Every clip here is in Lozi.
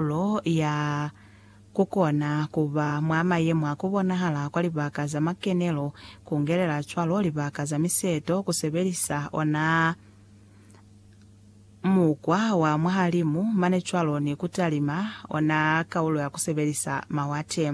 Karolo ya kukona kuba mwa mayemo a kubonahala kwa libaka za makenelo, kungelela cwalo libaka za miseto, kusebelisa ona mukwa wa mwahalimu mane cwalo ni kutalima ona kaulo ya kusebelisa mawate.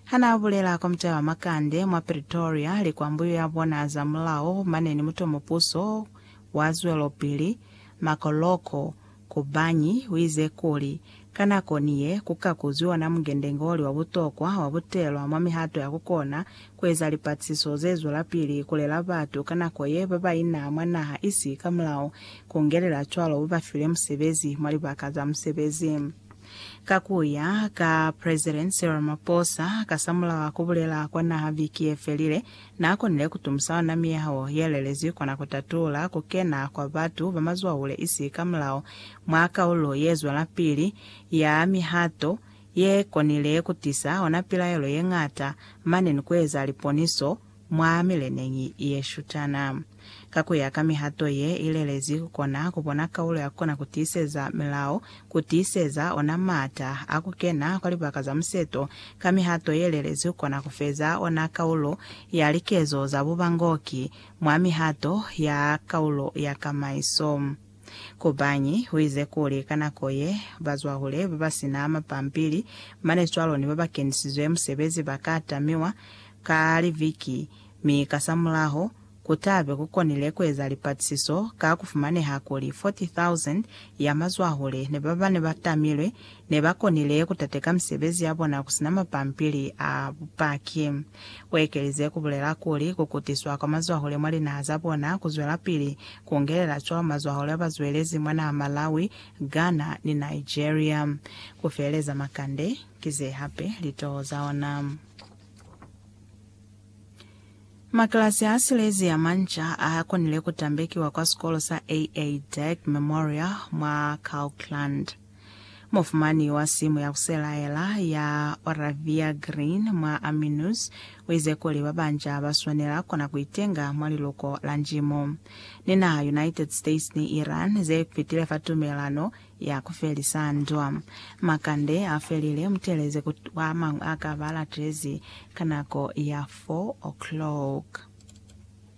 Hanaabulela kwa mutaba Makande mwa Pretoria, likwambuyu ya bona za mulao mane ni mutomo puso wa zwelopili, Makoloko, Kobanyi uize kuli, Ka nako ni ye, ku ka kuzwi ona mungendengoli wa butokwa wa butelwa mwa mihato ya ku kona ku eza lipatisiso ze zwelapili ku lela batu ka nako ye ba ba ina mwa naha isi ka mulao, ku ngelela cwalo bo ba file musebezi mwa libaka za musebezi. Ka ku ya ka Presidence Ramaphosa, kasamulaho a ku bulela kwa naha viki ye felile, Na konile ku tumusa ona miyaho ye lelezwi kona ku tatula ku kena kwa batu ba mazwahule isi ka mulao mwa kaulo ye zwelapili ya mihato ye konile ku tisa ona pilaelo ye ñata mane ni ku eza liponiso mwa mileneñi ye shutana. Ka ku ya ka mihato ye i lelezi, ku kona ku bona kaulo ya ku kona ku tiiseza milao, ku tiiseza ona m'ata a ku kena kwa libaka za museto. Ka mihato ye lelezi ku kona ku feza ona kaulo ya likezo za bubangoki mwa mihato ya kaulo ya kamaiso. Kobanyi u ize kuli ka nako ye, bazwahule ba ba si na mapampili mane cwaloni ba ba kenisizwe musebezi ba ka tamiwa ka liviki, mi kasamulaho, ku ta be ku konile ku eza lipatisiso ka ku fumaneha kuli 40,000 ya mazwahule ne ba ba ne ba tamilwe ne ba konile ku tateka misebezi ya bona ku si na mapampili a bupaki. U ekelize ku bulela kuli, Ku kutiswa kwa mazwahule mwa linaha za bona ku zwelapili, ku ngelela cwaho mazwahule a ba zwelezi mwa naha Malawi, Ghana, ni Nigeria. Ku feeleza makande, ki ze hape litoho za ona. Makilasi a silezi a manca a konile ku tambekiwa kwa sikolo sa AA. Dirk Memorial mwa Kirkland. Mufumani wa simu ya ku selaela ya Oravia Green mwa Army News u ize kuli ba banca ba swanela kona ku itenga mwa liluko la njimo. Ni naha United States ni Iran ze fitile fa tumelano ya ku felisa ndwa. Makande a felile, mu teeleze ku ba mañwi a ka ba latezi ka nako ya 4 o'clock.